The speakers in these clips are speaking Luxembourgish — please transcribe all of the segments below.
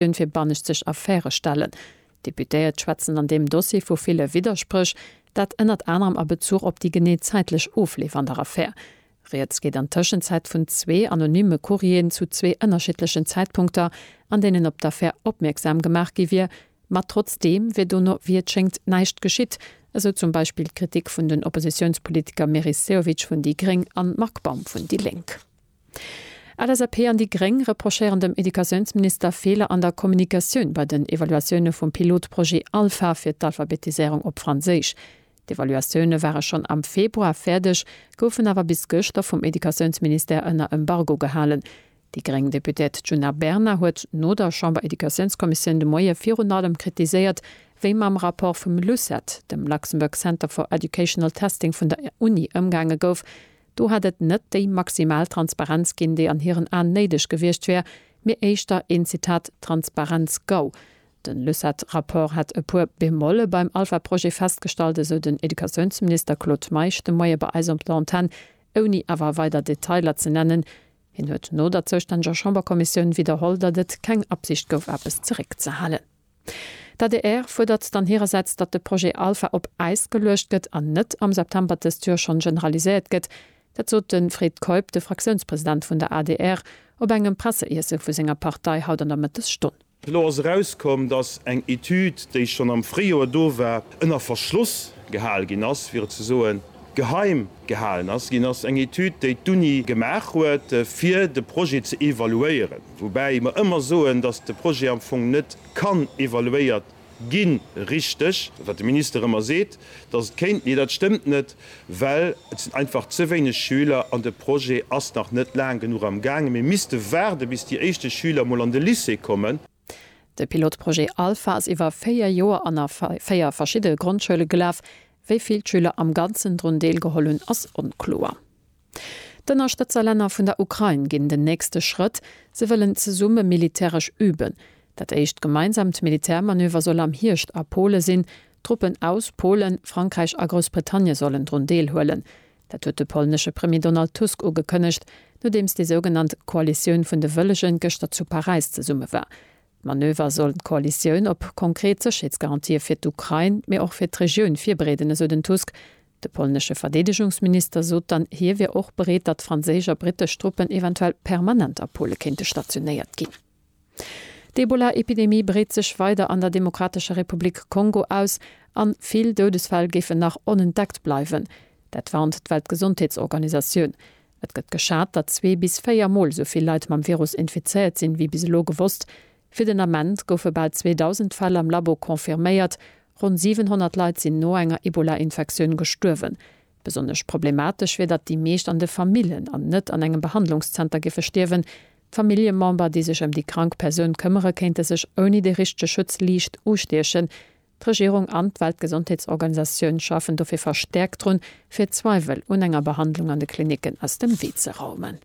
D'Kommissioun fir banneschtseg Affäre stellen. D'Deputéiert schwätzen an deem Dossier vu ville Widderspréch. Dat ënnert anerem a Bezuch op déi genee zäitlech Ofleef an der Affär. Rieds geet an Tëschenzäit vun zwee anonymme Courrieren zu zwee ënnerschiddlechen Zäitpunkter, an deenen op d'Affär opmierksam gemaach gi wier, ma trotzdeem wier dono, wéi et schéngt, näischt geschitt, esou zum Beispill d'Kritik vun den Oppositiounspolitiker Meris Sehovic vun déi gréng an Marc Baum vun déi lénk. LSAP an déi gréng reprochéieren dem Educatiounsminister Feeler an der Kommunikatioun bei den Evaluatioune vum Pilotprojet Alpha fir d'Alphabetiséierung op Franséisch. D'Evaluatioune ware schonn am Februar fäerdeg, goufen awer bis gëschter vum Educatiounsministère ënner Embargo gehalen. Déi gréng Deputéiert Djuna Bernard huet no der Chamber-Educatiounskommissioun de Moie virun allem kritiséiert, wéi mam Rapport vum LUCET, dem Luxembourg Centre for Educational Testing vun der Uni, ëmgaange gouf, Do hätt et net déi maximal Transparenz ginn, déi an hiren Aen néideg gewiescht wär, mee éischter een, Zitat, Transparenz-Gau. Den Lucet-Rapport hätt e puer Bemolle beim Alpha-Projet festgestallt, esou den Educatiounsminister Claude Meisch de Moie bei eis op der Antenn, ouni awer weider Detailer ze nennen. Hien huet no der zoustänneger Chamberkommissioun widderholl, datt et keng Absicht gouf eppes zeréckzehalen. D'adr fuerdert dann hirersäits, datt de Projet Alpha op Äis geluecht gëtt an net am September dëst Joer schonn generaliséiert gëtt. Dat sot de Fred Keup, de Fraktiounspresident vun der adr, op engem Presseiesse vu senger Partei haut an der Mëttesstonn. Elo ass erauskomm, datt eng Etüd, déi schonn am Fréijoer do war, ënner Verschloss gehal ginn ass, fir et ze soen, geheim gehalen ass ginn ass. Eng Etüd, déi d'Uni gemaach huet, fir de Projet ze evaluéieren. Woubäi mer ëmmer soen, dass de Projet am Fong net kann evaluéiert ginn, richteg, wat de Minister ëmmer seet, dass et kéint. Nee, dat stëmmt net, well et sinn einfach ze wéineg Schüler an de Projet ass nach net laang genuch am gaangen. Mir misste waarde bis déi éischte Schüler mol an de Lycée kommen. De Pilotprojet Alpha ass iwwer véier Joer an a véier verschidde Grondschoule gelaf. Wéi vill d'Schüler am Ganzen drun deelgeholl hunn, ass onkloer. D'Ënnerstëtzerlänner vun der Ukrain ginn den nächste Schrëtt, se wëllen zesumme militäresch üben. Dat éischt gemeinsaamt Militärmanöver soll am Hierscht a Pole sinn. Truppen aus Polen, Frankräich a Groussbritannie sollen drun deelhuelen. Dat huet de polnesche Premier Donald Tusk ugekënnegt, nodeems déi sougenannt Koalitioun vun de Wëllegen gëschter zu Paräis zesumme war. D'Manöver sollen d'Koalitioun op konkret Sécherheetsgarantië fir d'Ukrain, mee och fir d'Regioun virbereeden, esou den Tusk. De polnesche Verdeedegungsminister sot dann, hie wier och bereet, datt franséisch a brittesch Truppen eventuell permanent a Pole kéinte stationéiert ginn. D'Ebola-Epidemie breet sech weider an der Demokratescher Republik Kongo aus a vill Doudesfäll géifen nach onentdeckt bleiwen. Dat warnt d'Weltgesondheetsorganisatioun. Et gëtt geschat, datt zwee bis véier Mol esou vill Leit mam Virus infizéiert sinn, wéi bis elo gewosst. Fir den Ament goufe bal 2.000 Fäll am Labo confirméiert, ronn 700 Leit sinn no enger Ebola-Infektioun gestuerwen. Besonnesch problematesch wier, datt déi meescht an de Famillen an net an engem Behandlungszenter géife stierwen. D'Familljemember, déi sech ëm déi krank Persoun këmmere kéinte sech ouni de richtege Schutz liicht ustiechen. D'Regierung an d'Weltgesondheetsorganisatioun schafen dofir verstäerkt drun, fir d'Zweiwel un enger Behandlung an de Klinicken aus dem Wee ze raumen.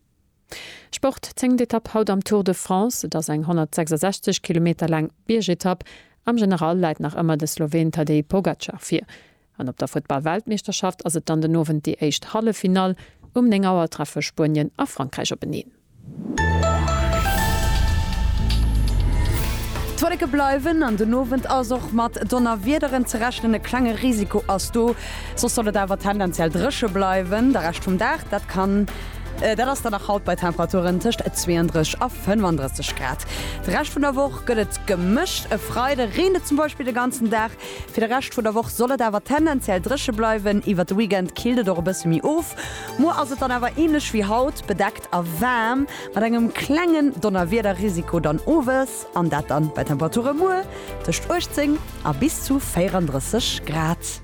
Sport, Zéngt Etapp haut am Tour de France. Et ass eng 166 Kilometer laang Biergetapp. Am General läit nach ëmmer de Sloween Tadej Pogacar vir. An op der Futtball-Weltmeeschterschaft ass et dann den Owend déi éischt Halleffinall. Um 9 Auer treffe Spuenien a Frankräich openeen. D'Wolleke bleiwen an den Owend ass och mat Donnerwiederen ze rechnen. E klenge Risiko ass do, soss soll et awer tendenziell dréche bleiwen de Rescht vum Dag. Dat kann. Dat ass dann nach haut bei Temperaturen tëscht 32 a 35 Grad. De Rescht vun der Woch gëtt et gemëscht, e Freide reent et zum Beispill de ganzen Dag. Fir de Rescht vun der Woch soll et awer tendenziell dréche bleiwen, iwwert de Weekend killt et och e bësse méi of. Muer ass et dann awer änlech wéi haut, bedeckt a waarm, mat engem klengen Donnerwiederrisiko dann owes, an dat dann bei Temperature muer tëscht 18 a bis zu 34 Grad.